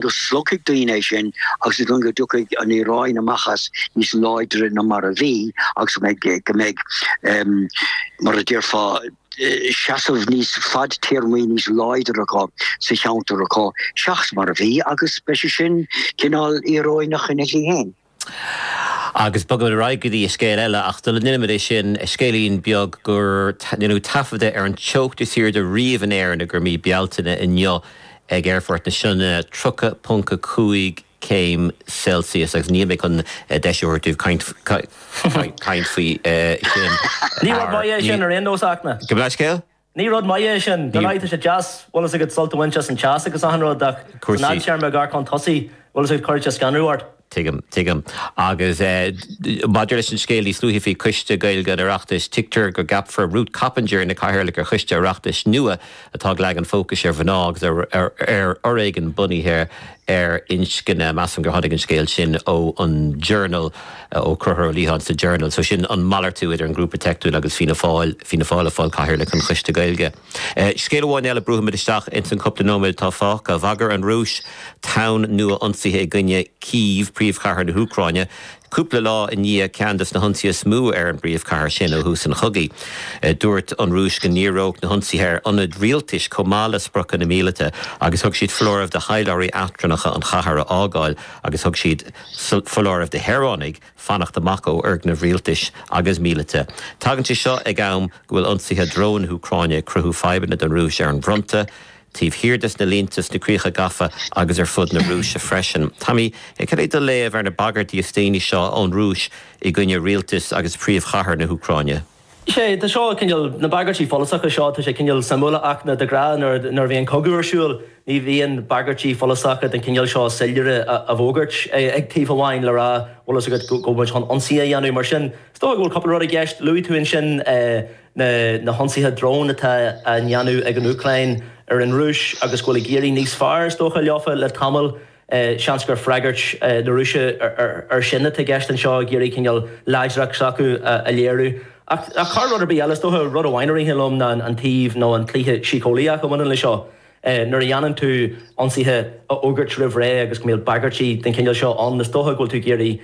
go slogfaidh daoine é sin agus is dóigh go dtiocfaidh an Iaráin amach as níos láidre ná mar a bhí agus go mbeidh, mar a déarfá, seasamh níos fadtéarmaí, níos láidre acu sa cheantar acu seachas mar a bhí agus beidh sé sin cineál íoróineach ina shlí féin. Agus bogaimid ar aghaidh go dtí scéal eile, ach sula ndéanaimid é sin, scéilín beag gur deineadh taifead de ar an teocht is airde riamh in Éirinn i gcoir mí Bealtaine inniu ag Aerfort na Sionainne, 30.5 céim Celsius. Agus níl mé chun deis a thabhairt daoibh caint faoi sin. Ní rud maith é sin ar aon nós, Fhachtna. Cad é do mheas? Ní rud maith é sin. Dar ndóigh, tá sé deas, bhfuil fhios agat, sult a bhaint as an teas agus achan rud, ach san fhadtéarma, ag amharc chun tosaigh, bhfuil fhios agat, cuirfidh sé scanradh ort. Tuigim, tuigim. Agus maidir leis an scéal níos luaithe faoi Choiste Gaeilge an Oireachtais, tuigtear go gceapfar Ruth Coppinger ina cathaoirleach ar choiste Oireachtais nua atá ag leagan fócais ar mhná agus ar fhoréigean bunaithe ar inscne. Measaim gur tháinig an scéal sin ó an Journal, ó Concubhar Ó Liatháin sa Journal. So sin an malartú idir an Grúpa Teicniúil agus Fianna Fáil, Fianna Fáil ag fáil cathaoirleach an Choiste Gaeilge. Scéal amháin eile, brúfaimid isteach ins an cúpla nóiméad atá fágtha. Bhagair an Rúis tonn nua ionsaithe i gcoinne Cív, príomhchathair na hÚcráine. Cúpla lá i ndiaidh ceann des na hionsaithe is mó ar an bpríomhchathair sin ó thús an chogaidh, dúirt an Rúis go ndíreodh na hionsaithe ar ionaid rialtais chomh maith le spriocanna míleata agus thug siad foláireamh do thaidhleoirí eachtrannacha an chathair a fhágáil agus thug siad foláireamh do shaoránaigh fanacht amach ó fhoirgnimh rialtais agus míleata. Tagann sé seo ag am go bhfuil ionsaithe dróin na hÚcráine ag cruthú fadhbanna don Rúis ar an bhfronta taobh thiar des na línte, sna críocha gafa agus ar fud na Rúise freisin. Tommy, cad é do léamh ar na bagairtí is déanaí seo ón Rúis i gcoinne rialtas agus príomhchathair na hÚcráine? Sé, tá seo cineál, na bagairtí follasacha seo, tá sé cineál suimiúil ach de ghnáth nuair, nuair a bhíonn cogadh ar siúl ní bhíonn bagairtí follasacha den chineál seo soiléire á bhfógairt ag taobh amháin le rá bhfuil fhios agat go bhfuil muid chun ionsaí a dhéanamh mar sin is dócha go bhfuil cúpla rud i gceist, luaigh tú ansin eh. na hionsaithe dróin atá á ndéanamh ag an Úcráin ar an Rúis agus go bhfuil ag éirí níos fearr, is dócha, leofa le tamall. Seans gur freagairt na Rúise air sin atá i gceist anseo, ag iarraidh cineál láidreacht s'acu a léiriú. Ach thar rud ar bith eile, is dócha, rud amháin a ritheann liom ná an taobh nó an cluiche síceolaíoch a bhaineann leis seo. Nuair a dhéanann tú ionsaithe a fhógairt roimh ré agus go mbíonn bagairtí den chineál seo ann, is dócha go bhfuil tú ag iarraidh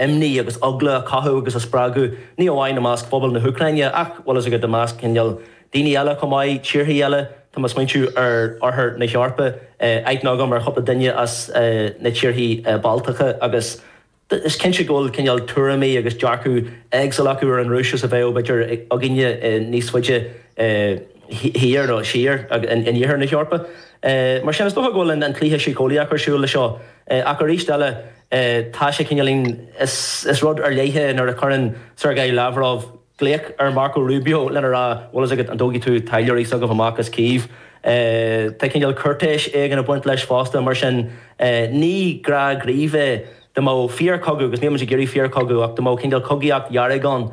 imní agus eagla a chothú agus a spreagadh, ní amháin i measc phobal na hÚcráine ach, bhfuil fhios agat, i measc cineál daoine eile chomh maith, tíorthaí eile. Tá mé ag smaointiú ar Oirthear na hEorpa, aithne agam ar chúpla duine as na tíorthaí Baltacha agus, Bhuel, is cinnte go bhfuil cineál tuairimí agus dearcadh éagsúil acu ar an Rúis is a bheadh, b'fhéidir, againne níos faide thiar, nó siar, in iarthar na hEorpa. Mar sin, is dócha go bhfuil an cluiche síceolaíoch ar siúl leis seo. Ach arís eile, tá sé cineáilín, is rud ar leith é nuair a chuireann Sergei Lavrov, Glaoch ar Marco Rubio lena rá, bhfuil fhios agat, an dtógfaidh tú taidhleoirí s'agaibh amach as Kyiv? Tá cineál cúirtéis éigin ag baint leis fosta, mar sin ní gnáthghníomh é. Dá mbeadh fíor-chogadh, agus nílmid ag iarraidh fíor-chogadh, ach dá mbeadh cineál cogaíocht dhearg ann,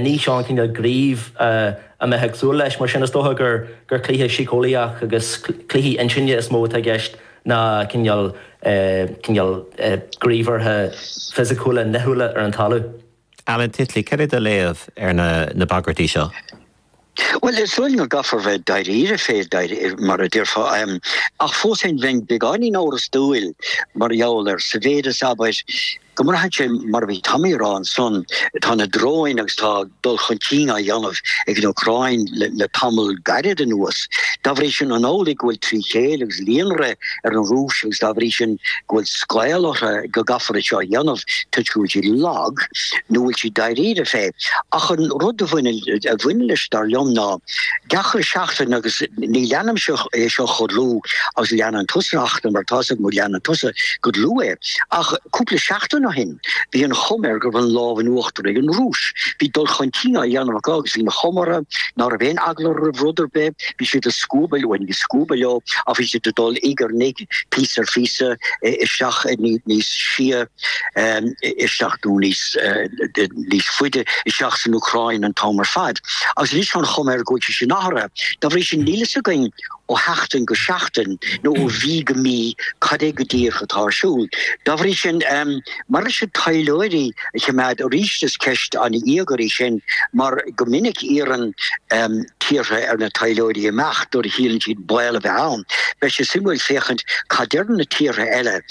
ní seo an cineál gnímh a mbeifeá ag súil leis. Mar sin is dócha gur cluiche síceolaíoch agus cluichí intinne is mó atá i gceist ná cineál gníomhartha fisiciúla nithiúla ar an talamh. Alan Titley, céard é do léamh ar na bagairtí seo? Bhuel, is dóigh liom go gcaithfear a bheith dáiríre fé, mar a déarfá, ach fós féin bheinn beagáinín amhrastúil mar gheall air sa mhéid is, abair, go mbraitheann sé, mar a bhí Tommy a rá ansan, tá na dróin agus tá dul chun cinn á dhéanamh ag an Úcráin le tamall gairid anuas. Dá bhrí sin, an amhlaidh go bhfuil trí chéile agus, líonrith ar an Rúis agus dá bhrí sin go bhfuil scaoll orthu go gcaithfear é seo a dhéanamh toisc go bhfuil siad lag nó bhfuil siad dáiríre fé. Ach an rud a bhaineann a bhaineann leis dar liom ná gach re seachtain agus ní leanaimse é seo chomh dlúth agus leanann tusa a Fhachtna mar tá's agam go leanann tusa go dlúth é ach cúpla seachtain ó shin Bhí an chuma air go raibh an lámh in uachtar ag an Rúis. Bhí dul chun cinn á dhéanamh acu agus bhí an chuma orthu ná raibh aon eagla roimh rud ar bith. Bhí siad ag scuabadh leo, ní ag scuabadh leo ach bhí siad ag dul uidh ar n-uidh, píosa ar phíosa isteach níos sia isteach nó níos faide isteach san Úcráin an t-am ar fad. Agus anois tá an chuma air go bhfuil sé sin athraithe. Dá bhrí sin níl a fhios againn ó sheachtain go seachtain nó ó mhí go mí cad é go díreach atá ar siúl. Dá bhrí sin, maidir leis na taidhleoirí a choimeád arís is ceist an-íogair í sin mar go minic iarrann tíortha ar na taidhleoirí imeacht nuair a shíleann siad baol a bheith ann. Beidh sé suimiúil féachaint cad deireann na tíortha eile.